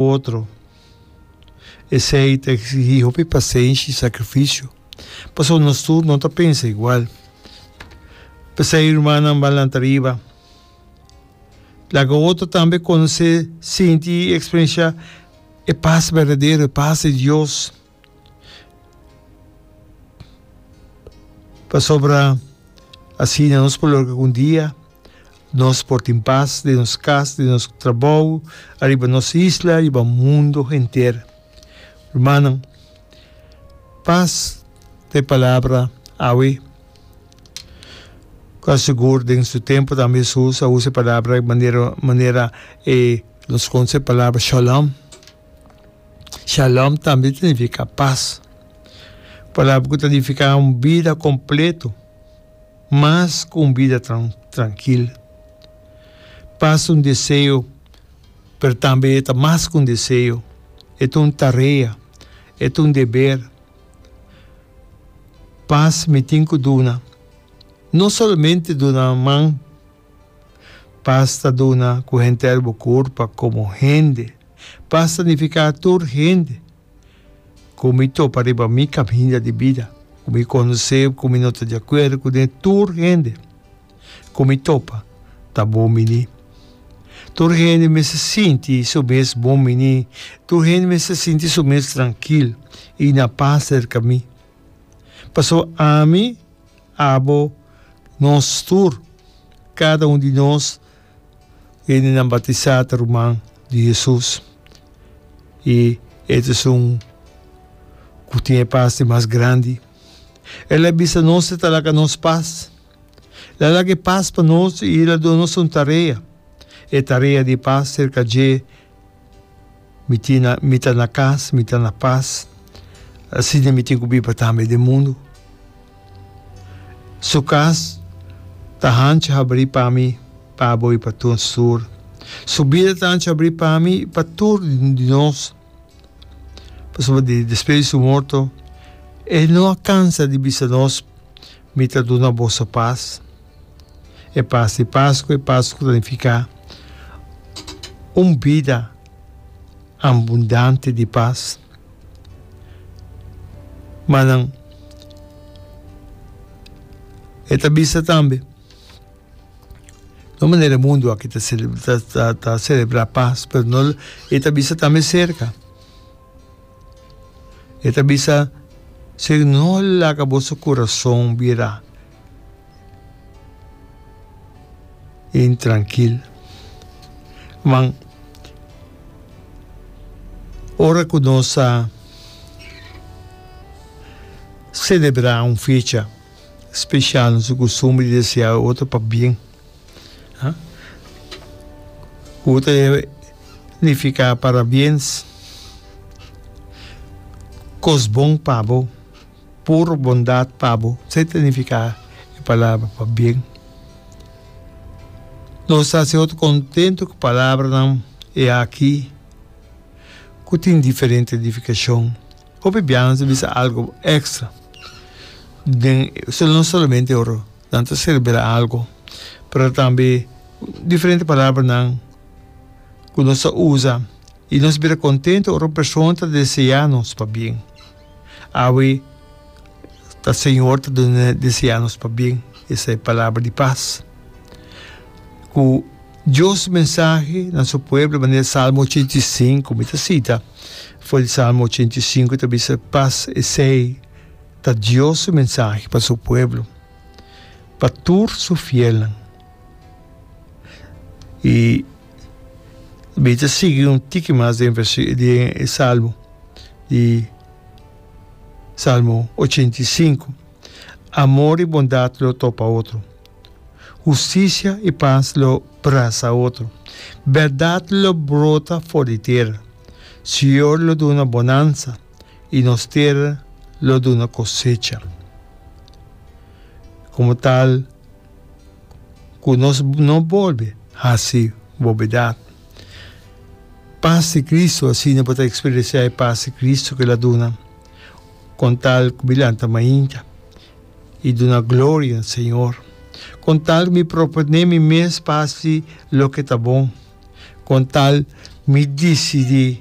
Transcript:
otro. Esei ta eksigí hopi pasenshi i sakrifisio, pasobra nos tur no ta pensa igual. P'esei, rumannan ban lanta riba, laga otro tambe konosé, sinti i eksperensiá e pas berdadero, e pas di Dios. Pasobra asina nos por logra ku un dia nos por tin pas den nos kas, den nos trabou, ariba nos isla, riba mundu henter. Rumannan, pas ta e palabra awe ku a sigur den su tempu tambe Hesus a usa e palabra manera manera nos konshe e palabra shalom. Shalom tambe ta nifiká pas. Palabra ku ta nifiká un bida kompletu mas ku un bida trankil. Pas un deseo, pero tambe e ta mas ku un deseo, e ta un tarea, e ta un deber. Pas mi tin ku duna, no solamente duna man, pas ta duna ku henter bo kurpa komo hende. pa sanifiká tur hende ku mi topa riba mi kaminda di bida, ku mi konosé ku mi no ta di akuerdo ku den tur hende ku mi topa ta bon miní. Tur hende mester sinti su mes bon miní, tur hende mester sinti su mes trankil i na pas serka mi, pasobra ami, Abo, nos tur, kada un di nos, hendenan batisá ta ruman di Hesus. I e ta esun ku tin e pas di mas grandi. El a bisa nos e ta laga nos pas. El a laga e pas pa nos i el a duna nos un tarea. E tarea di pas serka dje Mi tin mi ta na cas, mi ta na paz, asina mi tin cu biba tambe den mundo. Su cas ta hanchi habri pa mi, pa bo y pa tur nos tur. Su bida ta hanchi habri pa mi y pa tur di nos, pasobra di despues di su morto e no a cansa di bisa nos, Mi ta duna boso paz. E pas di Pasku, e Pasku ta nifiká un bida ambundante di pas. Ma nan e ta bisa tambe, no manera e mundu aki ta ta ta selebrá pas, pero no lo e ta bisa tambe serka. E ta bisa, Señor, no laga boso kurason bira intrankil man ora ku nos ta selebrá un fecha spesial nos tin kustumber di deseá e otro pa bien ku ta nifiká parabien kos bon pa bo. Puro bondat pa bo, sa ta nifiká e palabra pabien. Nos ta hasi otro kontentu ku palabranan e aki ku tin diferente nifikashon. Hopi biaha nos ta bisa algu èkstra den, no solamente ora nan ta selebrá algu, pero tambe diferente palabranan ku nos ta usa i nos bira kontentu ora un persona ta deseá nos pabien. Awe ta Señor ta duna desea nos pa bien, esei palabra di pas ku Dios su mensahe na su pueblo manera Salmo ochenta i sinku, mi ta sita for di Salmo ochenta i sinku ta bisa, pas esei ta Dios su mensahe pa su pueblo, pa tur su fielnan. I Bita sigui un tiki mas den versi den e salmo di Salmo 85. Amor i bondat lo topa otro. Hustisia i pas lo brasa otro. Bèrdat lo brota for di tera. Siñor lo duna bonansa i nos tera lo duna kosecha. Komo tal. ku nos no bolbe hasi bobedat. Pas di Kristu, asina bo ta eksperensiá e pas di Kristu ku el a duna, kon tal ku mi lanta mainta i duna gloria na Señor, kon tal ku mi propone mi mes pas di loke ta bon, kon tal mi disidí.